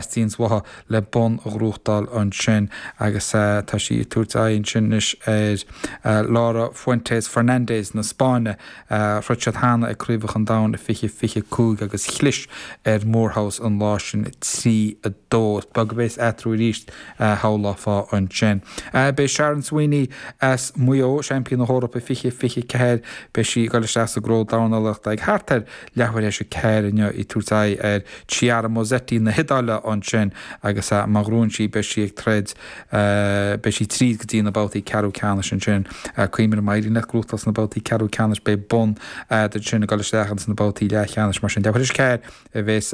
Seans aici le bonn a ghnóthachtáil ansin agus tá sí ag tabhairt aghaidh ansin anois ar Laura Fuentes Fernandez na Spáinne. Throid siad cheana ag Craobhacha an Domhain i fiche fiche cúig agus chlis ar Moorhouse an lá sin trí a dó. Is beag a bhéas eatarthu arís, shamhlófá ansin. Beidh Sharon Sweeney as Maigh Eo, seaimpín na hEorpa i fiche fiche ceathair, beidh sí ag dul isteach sa gcró dornálaíochta ag thart ar Leathuair tar éis a ceathair inniu ag tabhairt aghaidh ar Chiara Mosetti na hIodáile ansin agus má ghnóthaíonn sí beidh sí ag troid, beidh sí tríd go dtí na babhtaí ceathrú ceannais ansin. Cuimhnigh má éiríonn leat gnóthachtáil sna babhtaí ceathrú ceannais beidh bonn a'd ansin ag dul isteach ins na babhtaí leathcheannais mar sin. Leathuair tar éis a ceathair a bheas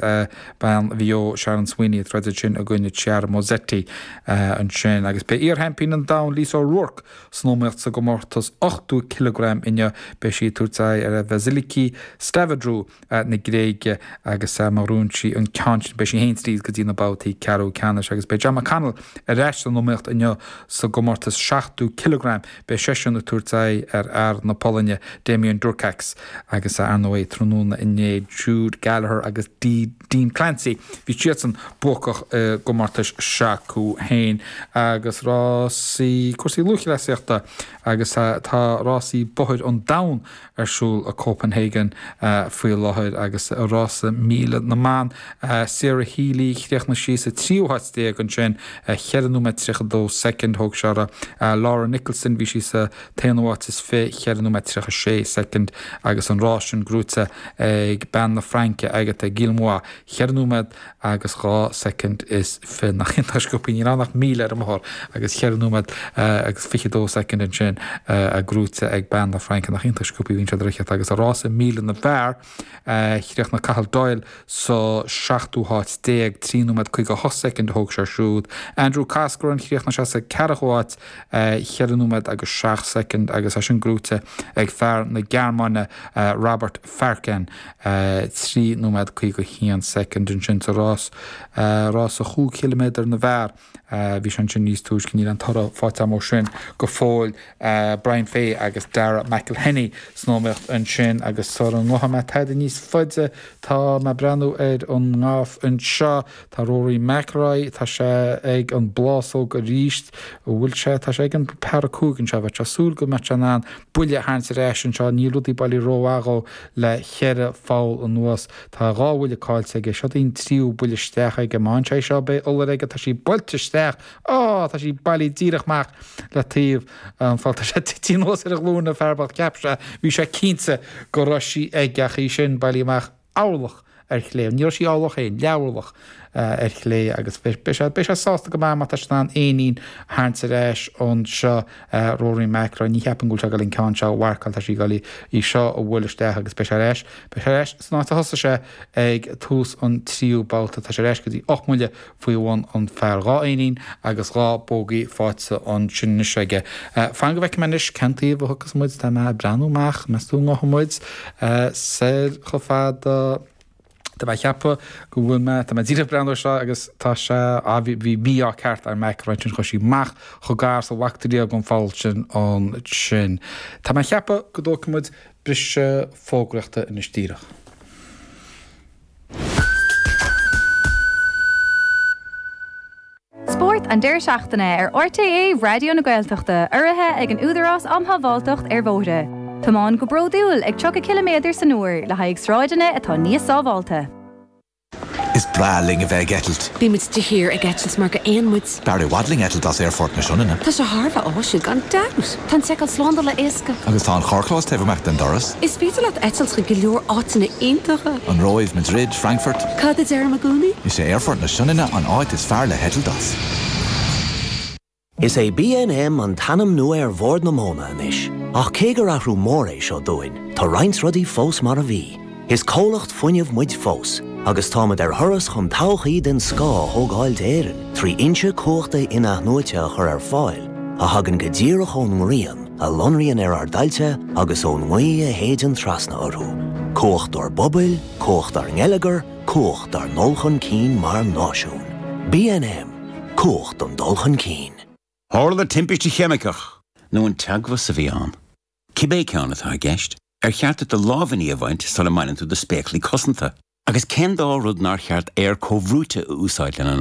bean Mhaigh Eo Sharon Sweeney ag troid ansin i gcoinne Chiara Mosetti ansin agus beidh iarsheaimpín an domhain Lisa O'Rourke, San iomaíocht sa gcomórtas 80 cileagram inniu, beidh sí ag tabhairt aghaidh ar Vasiliki Stavridou na Gréige agus má ghnóthaíonn sí an ceann sin, beidh sí féin tríd go dtí na babhtaí ceathrú ceannais. Agus beidh Jon McConnell ar ais san iomaíocht inniu sa gcomórtas 70 cileagram, beidh seisean ag tabhairt aghaidh ar fhear na Polainne, Damian Durkacz, agus, ar ndóigh, tráthnóna inné, Jude Gallagher agus D. Dean Clancy, bhí siadsan buacach i gcomórtais s'acu féin agus rásaí cúrsaí lúthchleasaíochta agus tá rásaí bóthair an domhan ar siúl i Copenhagen faoi láthair agus i rása míle na mban, Sarah Healy, chríochnaigh sí sa tríú háit déag ansin, cheithre nóiméad tríocha dó soicind thóg sé uirthi. Laura Nicholson, bhí sí sa. T-aonú háit is fiche cheithre nóiméad tríocha sé soicind agus an rás sin gnóthaithe ag bean na Fraince, Agathe Guillemot, cheithre nóiméad agus dhá soicind is fiche. Nach iontach sciobthaí! Níl ann ach míle ar an mbóthar agus cheithre nóiméad agus fiche dó soicind ansin gnóthaithe ag bean na Fraince. Nach iontach sciobthaí a bhíonn siad a' rith agus i rása míle na bhfear! Chríochnaigh Cathal Doyle sa seachtú háit déag, trí nóiméad 58 soicind a thóg sé siúd. Andrew Coscoran, chríochnaigh sé sa ceathrú háit, cheithre nóiméad agus seacht soicind, agus é sin gnóthaithe ag fear na Gearmáine, Robert Farken, trí nóiméad 51 soicind. Ansin sa rás, rás an chúig chiliméadar na bhfear, Bhí sé ansin níos túisce. Níl an toradh faighte agam ó sin go fóill. Brian Fay agus Darragh McElhinney san iomaíocht ansin agus sula ngabhfaidh mé tada níos faide tá mé ag breathnú ar an ngailf anseo. Tá Rory McIlroy, tá sé ag an bplásóg arís. An bhfuil sé? Tá sé ag an par 5 anseo. Bheadh sé ag súil go mbeadh sé in ann buille a tharraingt ar ais anseo. Níl rudaí bailithe rómhaith dhó le cheithre pholl anuas. Tá dhá bhuille caillte aige. Seod é an tríú buille isteach aige. Má fhaigheann sé seo, beidh iolar aige. Tá sí buailte isteach. Á! Tá sí bailithe díreach amach le taobh an phoill. Tá sé ag titim anuas ar a ghlúin, an fear bocht. Cheap sé, bhí sé cinnte, go raibh sí aige, ach í sin bailithe amach. Orlach ar chlé. Ní raibh sí orlach féin. Leathorlach. ar chlé, agus beidh sé sásta go maith má tá sé in ann éinín a tharraingt ar ais ann. Seo Rory McIlroy, ní cheapaim go bhfuil sé ag dul an ceann seo a mharcáil, tá sé ag dul í seo a bhualadh isteach agus beidh sé ar ais. Beidh sé ar ais san áit a thosaigh sé ag tús an tríú babhta, tá sé ar ais go dtí ocht mbuille faoi bhun an phar. Dhá éinín agus dhá bogey faighte ansin anois aige. Fan go bhfeicfidh mé anois cén taobh a thiocfas muid, tá mé ag breathnú amach, meas tú an ngothfidh muid soir chomh fada? Tá mé ag ceapadh go bhfuil mé, tá mé díreach ag breathnú air seo agus tá sé, á bhí, bhí mí-ádh ceart ar McIlroy ansin chuaigh sí amach chomh gar sa bheadh a dtarraingeodh an pholl sin ansin. Tá mé ag ceapadh go dtógfaidh muid briseadh fógraíochta anois díreach. Spórt an deireadh seachtaine ar RTÉ Raidió na Gaeltachta urraithe ag an Údarás Um Shábháilteacht ar Bhóithre. Tiomáin go bródúil ag 30 ciliméadar san uair le haghaidh sráideanna atá níos sábháilte. Is breá linn a bheith ag eitilt. Bímid de shíor ag eitilt mar gur éin muid. B'fhearr i bhfad linn eitilt as Aerfort na Sionainne. Tá sé thar a bheith áisiúil, gan dabht! Tá an tseiceáil slándála éasca. Agus tá an carrchlós taobh amach den doras. Is féidir leat eitilt chuig go leor áiteanna iontacha. An Róimh, Madrid, Frankfurt. Cad a deirim i gcónaí? Is é Aerfort na Sionainne an áit is fearr le heitilt as. Is é BNM an t-ainm nua ar Bhord na Móna anois, ach cé gur athrú mór é seo dúinn, tá roinnt rudaí fós mar a bhí. Is comhlacht fuinnimh muid fós, agus táimid ar thuras chun todhchaí den scoth a thógáil d'Éirinn trí fhoinsí cumhachta inathnuaite a chur ar fáil a thagann go díreach ón ngrian a lonraíonn ar ár dtailte agus ón ngaoth a shéideann trasna orthu, cumhacht dár bpobail, cumhacht dár ngeilleagar, cumhacht dár ndul chun cinn mar náisiún. BNM, Cumhacht don dul chun cinn. Tharla timpiste cheimiceach, nó an teagmhas a bhí ann? Cibé ceann atá i gceist, ar cheart duit do lámhainní a bhaint sula mbaineann tú do spéaclaí cosanta? Agus cén dá rud nár cheart aer comhbhrúite a úsáid lena